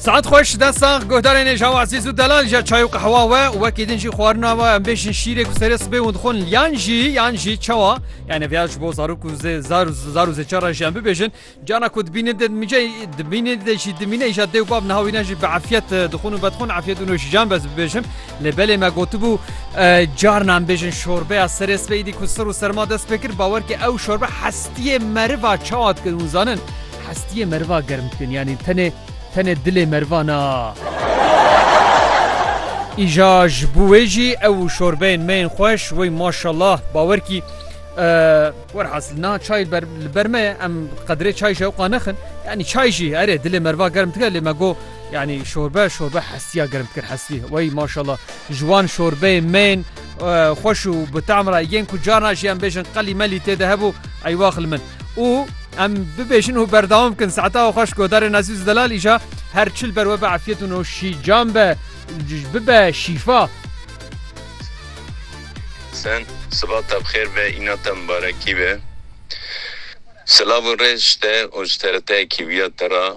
Saet xweş de sax guhdarên êja wazîz û delal ja çay û qehwa we û wekî din jî xwarina we em bêjin şîrê ku serê sibê hûn dixwin yan jî yan jî çawa yani vêya ji bo zarok û zê zar û zar û zêçar re jî em bibêjin cana ku dibînin dê dimîce dimînê dê jî dimîne îja dê û bab niha wî ne jî bi efiyet dixwin û bedixwin efiyet û nojîjan bez bibêjim lê belê me gotibû carna em bêjin şorbeya serê sibê îdî ku sir û serma dest pê kir bawer ki ew şorbe hestiyê meriva çawa dikin hûn zanin Hestiyê meriva germ dikin yanî tenê tenê dilê meriva na. Îja ji bo wê jî ew û şorbeyên me yên xweş wey maşallah bawer kî werhasil niha çay ber li ber me ye em qedrê çay jî ewqa nexin yanî çay jî erê dilê meriva germ dike lê me got yanî şorbe şorbe hestiya germ dikir hestî wey maşallah ji wan şorbeyên me yên xweş û bi tam re yên ku carna jî em bêjin qelî melî tê de hebû eywax li min. û em bibêjin û berdewam bikin saeta xwe ji godarên Ezîz Delal îja her çil ber we be efiyet û no şî cam be bibe şîfa. Sen siba te bixêr be îna te mibarekî be. Silav û rêz ji te û ji TRT'yekî viya te ra.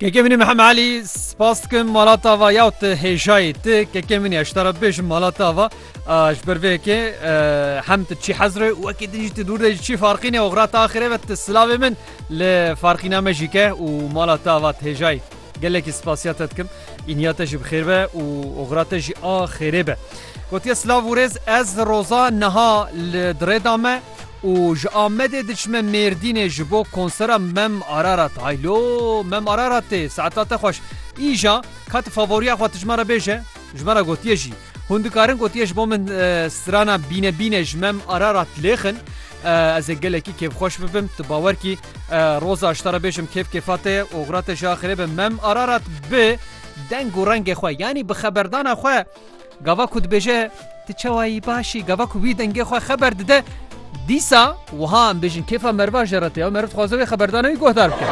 Kekê min ê Mihem Elî spas dikim mala te ava ya û tu hêjayî ti kekê min ya ji te re bibêjim mala te ava ji ber vê yekê hem tu çî hezir e û wekî din jî tu dûr de ji çî farqîne û qira te axirê ve tu silavê min li farqîna me jî ke û mala te ava tu hêjayî gelekî spasiya te dikim îniya te jî bi xêr be û qira te jî a xêrê be. Gotiye silav û rêz ez roza niha li dirêda me Û ji Amedê diçime Mêrdînê ji bo konsera Mem Ararat. Hay lo Mem Araratê saeta te xweş. Îja ka tu favoriya xwe tu ji me re bêje? Ji me re gotiye jî. Hûn dikarin gotiye ji bo min strana Bîne Bîne ji Mem Ararat lêxin. Ez ê gelekî kêfxweş bibim. Tu bawer kî roza ji te re bêjim kêf kêfa te ye. Oxira te jî axirê be. Mem Ararat bi deng û rengê xwe yanî bi xeberdana xwe. Gava ku dibêje tu çawa yî baş î, gava ku wî dengê xwe xeber dide, dîsa wiha em bêjin kêfa meriva jê re tê ya, meriv dixwaze wê xeberdana wî guhdar bike.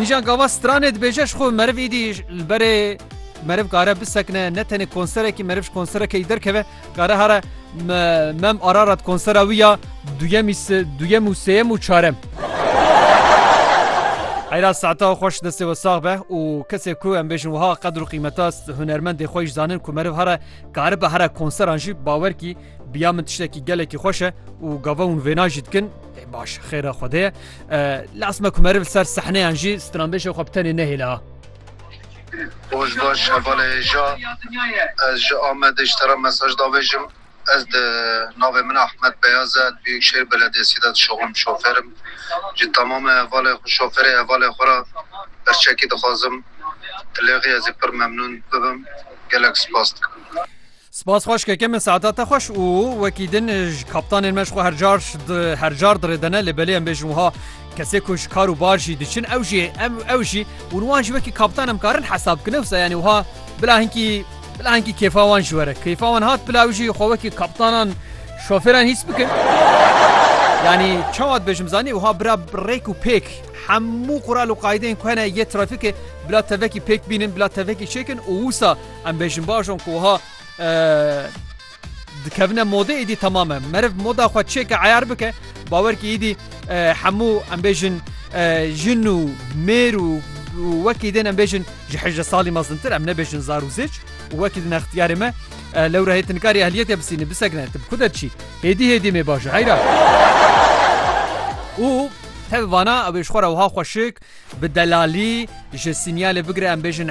Încan gava stranê dibêje ji xwe meriv îdî li berê meriv kare bisekine, ne tenê konserekî meriv ji konserekê yî derkeve, Kare hare mem Ararat konsera wî ya duyem û sêyem û çarem. Heyra saeta xweş destê we sax be û kesê ku em bêjin wiha qedr û qîmeta hunermendê xwe jî zanin ku meriv here karibe here konseran jî bawer kî biya min tiştekî gelekî xweş e û gava hûn vêna jî dikin baş xêra xwedê ye lasme ku meriv ser sehneyan jî stranbêşê xwe bi tenê nehêle ha. Rojbaş hevalê hêja ez ji Amedê ji te re mesaj davêjim. Ez di navê min Ahmed Beyaz e di Biyûkşehîr Belediyesî de dişuxlim şofêr im. Ji temamê hevalê xwe şofêrê hevalê xwe re berçekî dixwazim. Dilêxî ezî pir memnûn bibim. Gelek spas dikim. Spas xweş keke min saeta te xweş û wekî din ji kaptanên me ji xwe her car her car dirêdene lê belê em bêjin wiha kesê ku ji kar û bar jî diçin ew jî em ew jî û wan jî wekî kaptan em karin hesab bikine wisa yanî wiha bila hinkî bila hinkî kêfa wan ji were kêfa wan hat bila ew jî xwe wekî kaptanan şofêran hîs bikin yanî çawa dibêjim zanî wiha bira rêk û pêk hemû qural û qaydeyên ku hene yê trafîkê bila tevekî pêk bînin bila tevekî çêkin û wisa Em bêjin baş on ku wiha dikevine modê êdî temam e. Meriv moda xwe çêke eyar bike bawer kî êdî hemû em bêjin jin û mêr û wekî dên em bêjin ji hejde salî mezintir em nebêjin zar û zêç û wekî din extiyarê me lewra hê tinkarî ehliyetê bisînî bisegine tu ku derçî hêdî hêdî mê baş heyra û tevana ew êşxora wiha xweşik bi delalî ji sînyalê bigire em bêjin